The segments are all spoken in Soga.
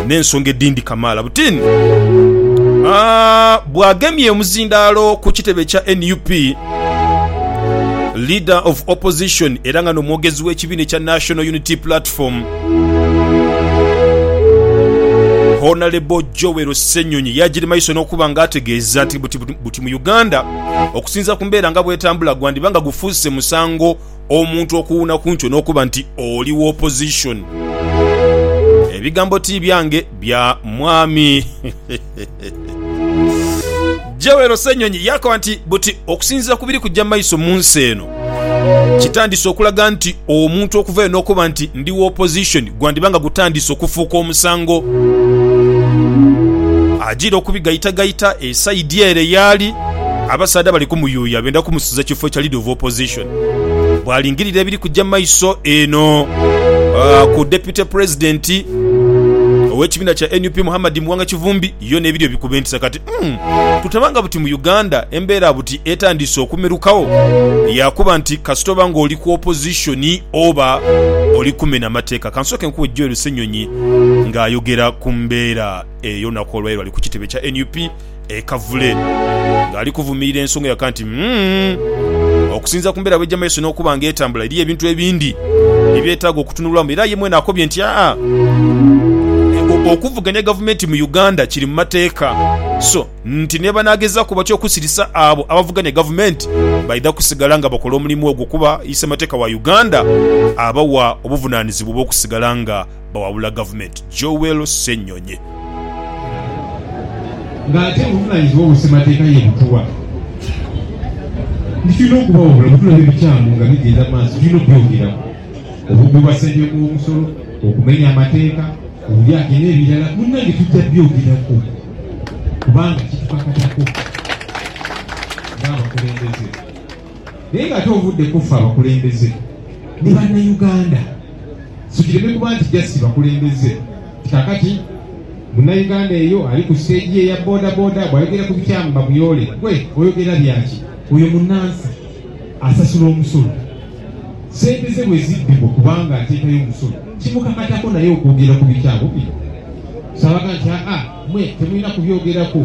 n'ensonga edhindi kamaala butini bw'agemye omuzindaalo ku kitebe kya nup. Leader of Opposition era nga n'omwogezi w'ekibiina ekya National Unity Platform, Honalebo Joel Ssenyonyi yaagiri maiso n'okuba nga ategeeza nti buti mu Uganda okusinziira ku mbeera nga bw'etambula gwandiba nga gufuuse musango omuntu okuwuuna ku nkyo n'okuba nti oli wa opposition. Ebigambo ti byange, bya Mwami. Joel Ssenyonyi yakoba nti buti okusinziira ku biri kujja maiso mu nsi eno kitandise okulaga nti omuntu okuvayo n'okuba nti ndi wa opposition gwandiba nga gutandise okufuuka omusango. Ajiire okubigaitagaita esaidi ere yaali abasaadha bali kumuyuuya benda kumusiza kifo kya Leader of Opposition. bwalingirira ebiri kuja mu maiso eno ku Deputy President ow'ekibiina kya nup Muhammad Muwanga Kivumbi yo n'ebiri ebikubentisa kati mm, tutabanga buti mu Uganda embeera buti etandiise okumerukagho yakuba nti kasita oba nga oli ku opposition oba oli kumena mateeka. Kansooke nkuwe Joel Ssenyonyi ng'ayogera ku mbeera eyo naku olwairo ali ku kitebe kya nup. e Kavule ng'ali kuvumirira ensonga yaka nti, Umm, okusinziira ku mbeera bw'eija mu maiso n'okuba nga etambula, eriyo ebintu ebindi ebyetaaga okutunulwamu era ye mwene akobye nti, Aa, okuvuganya gavumenti mu Uganda kiri mu mateeka so nti ni bwebanaagezaaku batya okusirisa abo abavuganya gavumenti baidha kusigala nga bakola omulimu ogwo kuba Ssemateka wa Uganda abawa obuvunaanizibwa obw'okusigala nga bawabula gavumenti, Joel Ssenyonyi. Nga ate omuvunaanyizibwa owe ssemateeka ye Butuwa nti tulina okubawabula bwetulaba ebikyamu nga bigenda mu maaso tulina obyogeraku, obubbi bwa ssente w'omusolo, okumenya amateeka, obulyake n'ebirala munnange tujja byogeraku kubanga kitukakatako ng'abakulembeze. Naye nga ate ovudde ku ffe abakulembeze ni Bannauganda, so kireme kuba nti just bakulembeze nti kakati Munnauganda eyo ali ku stage ye eya bodaboda bwayogera ku bikyamu bamuyoole. Gwe oyogera byaki? Oyo munnansi asasula omusolo, sente ze bwe zibbibwa kubanga ateekayo omusolo kimukakatako naye okwogera ku bikyamu bino? So abaga nti aa mwe temulina kubyogerako.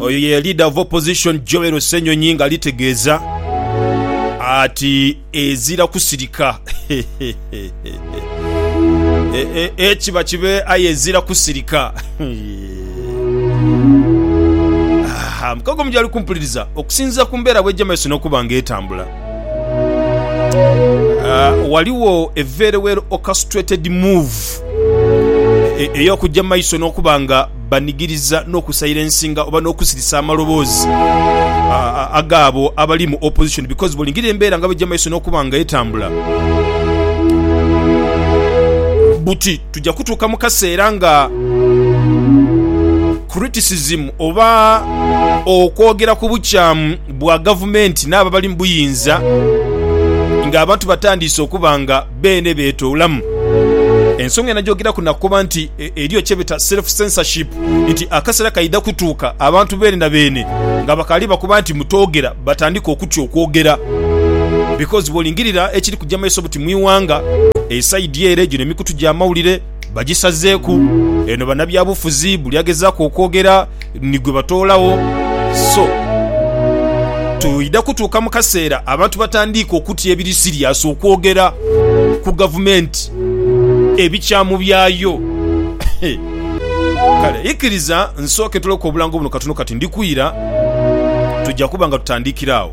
Oyo ye Leader of Opposition Joel Ssenyonyi nga alitegeeza ati ezira kusirika ekiba e, e, kibe aye ezira kusirika Aha, mukago mujali kumpuliriza okusinziira ku mbeera bwejja maiso n'okuba nga etambula. Uh, waliwo a very well orchestrated move e, ey'okujja mu maiso n'okuba nga banigiriza n'okusilensinga oba n'okusirisa amaloboozi agaabo abali mu opposition because bwolingirira embeera nga bajja mu maiso n'okuba nga etambula buti tujja kutuuka mu kaseera nga criticism oba okwogera ku bukyamu bwa gavumenti n'abo abali mu buyinza ng'abantu batandiise okuba nga beene beetoolamu. Ensonga enajoogeraku nakoba nti eriyo kyebeta self-censorship nti akaseera kaidha kutuuka abantu beene na beene nga bakaali bakoba nti mutoogera batandike okutya okwogera because bwolingirira ekiri kuja maiso buti mu iwanga esaidi ere gino emikutu gy'amawulire bagisazeeku. Eno banabyabufuzi buli agezaku okwogera ni gwe batoolawo. So twidha kutuuka mu kaseera abantu batandiike okutya ebiri siriasi okwogera ku gavumenti ebikyamu byayo. Kale ikiriza nsooke tuloke obulango buno katono kati ndi kwira. Tuja kuba nga tutandiikira agho.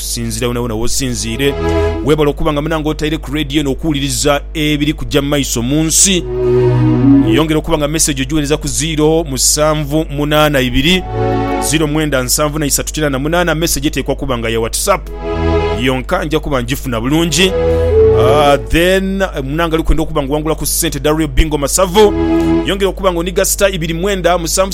Sinzira wonawona wosinziire. Webale okuba nga munange otaire ku radio eno okuwuliriza ebiri kuja mumaiso munsi. Yongera okuba nga message ogiwereza ku ziiro musanvu munana ibiri ziiro mwenda nsanvu na isatu kinana munana. Message etekwa kuba nga ya WhatsApp yonka nja kuba ngifuna bulungi. Uh, then munange alikwenda okuba nga owangula ku sente da real bingo masavu. Yongera okuba nga oniga star ibiri mwenda musanvu